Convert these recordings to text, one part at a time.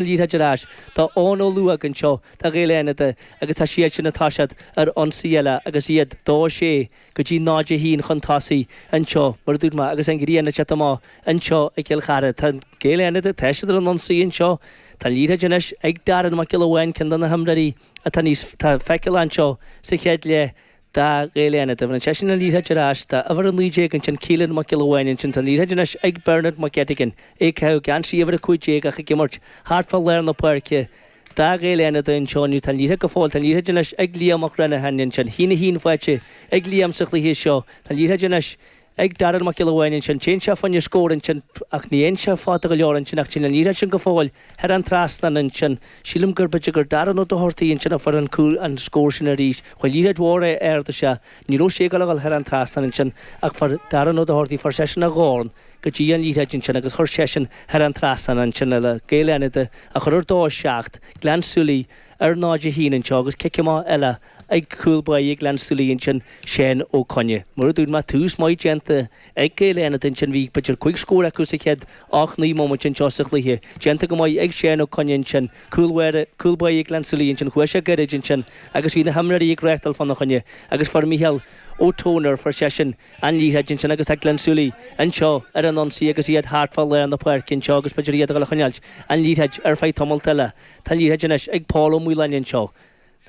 Liathróid ar ais do Eoin Ó Laoghóg anseo do Ghaeil Fhánada agus tá siadsan, tá siad ar ionsaí eile agus iad dó a sé go dtí náid a haon chun tosaigh anseo mar a dúirt mé agus an ghrian ag teacht amach anseo i gCill Chartha. Tá Gaeil Fhánada, tá siad ar an ionsaí anseo. Tá an liathróid anois ag Darren Mac Giolla Bháin ceann de na himreoirí atá níos tá feiceáil anseo sa chéad leath. do Ghaeil Fhánada. Tugann seisean an liathróid ar ais do uimhir 19 ansin Keelan Mac Giolla Bháin ansin tá an liathróid anois ag Bernard McGettigan, é ag caitheamh geansaí uimhir 15 ach ag imirt thart fá lár na páirce do Ghaeil Fhánada anseo inniu tá an liathróid go fóill tá an liathróid anois ag Liam McGrenaghan ansin a haon a haon faighte ag Liam sa chluiche seo tá an liathróid anois ag Darragh Mac Giolla Bháin ansin. Téann sé fá choinne scór ansin ach ní théann sé fada go leor ansin ach téann an liathróid sin go fóill thar an trasnán ansin. Sílim go mb'fhéidir gur Darragh Ó Dochartaigh ansin a fuair an cúl, an scór sin arís. Chuir liathróid mhór ard isteach. Ní raibh sé ag dul a dhul thar an trasnán ansin ach fuair Darragh Ó Dochartaigh, fuair seisean a dhorn go dtí an liathróid ansin agus chuir seisean thar an trasnán ansin le Gaeil Fhánada a chur ar dó a seacht, Gleann tSúilí ar náid a haon anseo agus cic amach eile. ag cúl báire Gleann tSúilí ansin Seán Ó Coinne. Mar a dúirt mé tús maith déanta ag Gaeil Fhánada ansin bhí b'fhéidir cúig scór acu sa chéad ocht naoi móimint anseo sa chluiche. Déanta go maith ag Seán Ó Coinne ansin. Cúl báire, cúl báire Gleann tSúilí ansin chuaigh sé gairid ansin agus bhí na himreoirí ag reáchtáil fána choinne agus fuair Micheál Ó Tónair, fuair seisean an liathróid ansin agus tá Gleann tSúilí anseo ar an ionsaí agus iad thart fá lár na páirce anseo agus b'fhéidir iad a dhul a choinneáilt an liathróid ar feadh tamalt eile. Tá an liathróid anois ag Pól Ó Maoláin anseo.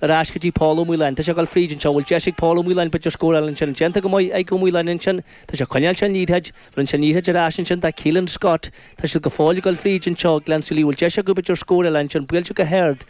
Ar ais go dtí Pól Ó Maoláin. Tá sé ag dul fríd anseo. Bhfuil deis ag Pól Ó Maoláin b'fhéidir scóráil ansin? Déanta go maith ag Ó Maoláin ansin. Tá sé ag coinneáil sé an liathróid. Rinne sé an liathróid ar ais ansin do Keelan Scott. Tá siad go fóill ag dul fríd anseo. Gleann tSúilí, bhfuil deis acu b'fhéidir scóráil ansin? Buailte go hard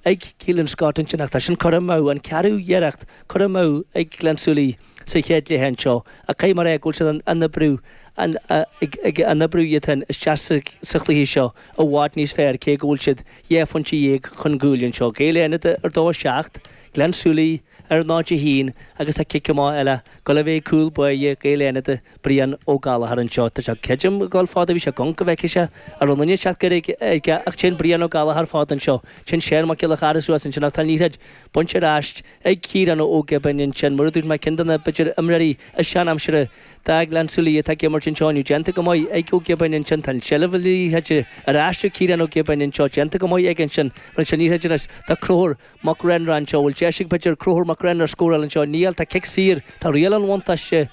ag Keelan Scott ansin ach tá sin curtha amú. An ceathrú iarracht curtha amú ag Gleann tSúilí sa chéad cluiche anseo. Ach cuma air go bhfuil siad an an oibriú an ag an oibriú iad fhéin isteach sa sa chluiche seo i bhfad níos fearr cé go bhfuil siad Dhá phointe dhéag chun cúil anseo, Gaeil Fhánada ar dó a seacht, Gleann tSúilí ar náid a haon agus tá cic amach eile ag dul a bheith ag cúl báire Gaeil Fhánada, Brian Ó Gallchóir anseo. Tá sé creidim ag dul fada bhí sé ag amharc go bhfeicfeadh sé an raibh aon duine ag teacht gairid aige ach téann Brian Ó Gallchóir fada anseo, téann Seán Mac Giolla Charra suas ansin ach tá an liathróid bainte ar ais ag Ciarán Ó Giobáin ansin. Mar a dúirt mé ceann de na b'fhéidir imreoirí is seanaimseartha do Ghleann tSúilí atá ag imirt anseo inniu, déanta go maith ag Ó Giobáin ansin. Tá an tseilbh liathróide ar ais ag Ciarán Ó Giobáin anseo. Déanta go maith aige ansin. Rinne sé an liathróid anois do Conchúr Mac Réanáin anseo. Bhfuil deis ag b'fhéidir Conchúr Mac Réanáin scóráil anseo? Níl. Tá cic saor. Tá riail an bhuntáiste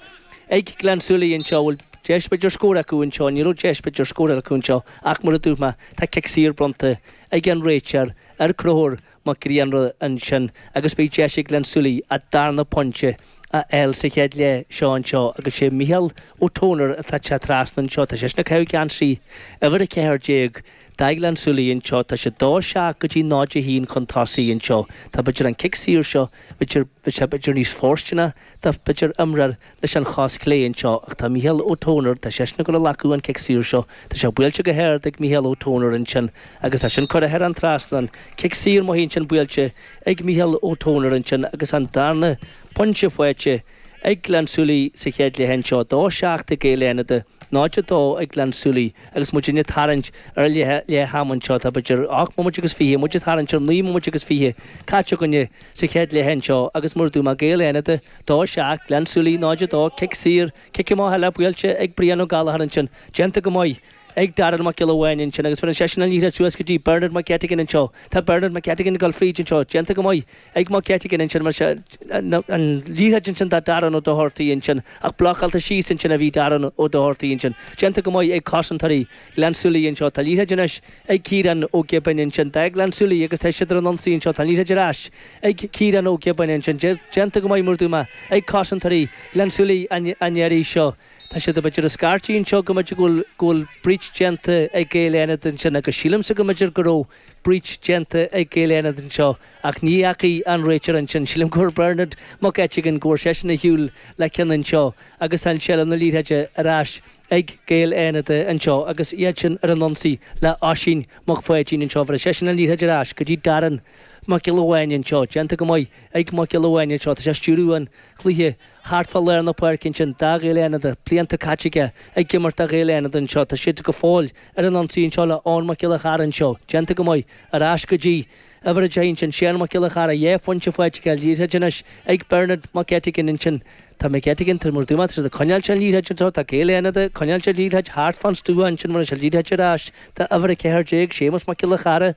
ag Gleann tSúilí anseo. Bhfuil deis b'fhéidir scór acu anseo? Ní raibh deis b'fhéidir scóráil acu anseo ach mar a dúirt mé tá cic saor bronnta ag an réiteoir ar Conchúr Mac Grianna ansin agus beidh deis ag Gleann tSúilí an darna pointe a fháil sa chéad leath seo anseo agus sé Micheál Ó Tónair atá ag teacht trasna anseo. Tá seisean ag caitheamh geansaí uimhir 14 do Ghleann tSúilí anseo. Tá siad 2 7 go dtí 0 1 chun tosaigh anseo. Tá b'fhéidir an cic saor seo b'fhéidir bheadh sé b'fhéidir níos fóirsteanaí. Do b'fhéidir imreoir leis an chos chlé anseo ach tá Micheál Ó Tónair, tá seisean ag dul a ghlacadh an cic saor seo. Tá sé buailte go hard ag Micheál Ó Tónair ansin agus tá sin curtha thar an trasnán. Cic saor maith ansin buailte ag Micheál Ó Tónair ansin agus an darna pointe faighte ag Gleann tSúilí sa chéad leath anseo. 2 7 ag Gaeil Fhánada, 0, 2 ag Gleann tSúilí agus muid ag tarraingt ar leath ama anseo. Tá b'fhéidir 8 mbomaite agus fiche, muid ag tarraingt ar 9 mbomaite agus fiche caite againn. sa chéad leath anseo agus mar a dúirt mé Gaeil Fhánada 2 7, Gleann tSúilí 0, 2, cic saor, cic amach eile buailte ag Brian Ó Gallachóir ansin, déanta go maith ag Darren Mac Giolla Bháin ansin agus faigheann seisean an liathróid suas go dtí Bernard McGettigan anseo, tá Bernard McGettigan ag dul fríd anseo, déanta go maith ag McGettigan ansin bheir sé an liathróid ansin do Darren Ó Dochartaigh ansin ach blocáilte síos ansin a bhí Darren Ó Dochartaigh ansin, déanta go maith ag cosantóirí. Ghleann tSúilí anseo tá an liathróid anois ag Ciarán Ó Giobáin ansin do Ghleann tSúilí agus tá siad ar an ionsaí anseo tá an liathróid ar ais ag Ciarán Ó Giobáin ansin déanta go maith mar a dúirt mé ag cosantóirí Ghleann tSúilí an iarraidh seo tá siad b'fhéidir ag scairtigh anseo go mb'fhéidir go bhfuil breach déanta ag Gaeil Fhánada ansin agus sílimse go mb'fhéidir go raibh breach déanta ag Gaeil Fhánada anseo ach ní fhacaidh an réiteoir é sin sílim go bhfuair Bernard Mac Eiteagáin go bhfuair seisean ar shiúl le ceann anseo agus tá seilbh na liathróide ar ais ag Gaeil Fhánada anseo agus iad sin ar an ionsaí le Oisín Mac Pháidín anseo. Bheir seisean an liathróid ar ais go dtí Darren Mac Giolla Bháin anseo. Déanta go maith ag Mac Giolla Bháin anseo. Tá sé ag stiúradh an chluiche thart fá lár na páirce ansin do Ghaeil Fhánada. Blianta caite aige ag imirt do Ghaeil Fhánada anseo. Tá siad go fóill ar an ionsaí anseo le Eoin Mac Giolla Chearra anseo. Déanta go maith. Ar ais go dtí. Uimhir a 10 ansin, Seán Mac Giolla Chearra Dhá phointe faighte aige, an liathróid anois ag Bernard Mac Eiteagáin ansin. Tá Mac Eiteagáin tá mar a dúirt mé tá siad ag coinneáilt an liathróid anseo, tá Gaeil Fhánada ag coinneáilt an liathróid thart fán stua ansin bheir sé an liathróid ar ais do uimhir a 14, Séamus Mac Giolla Chearra.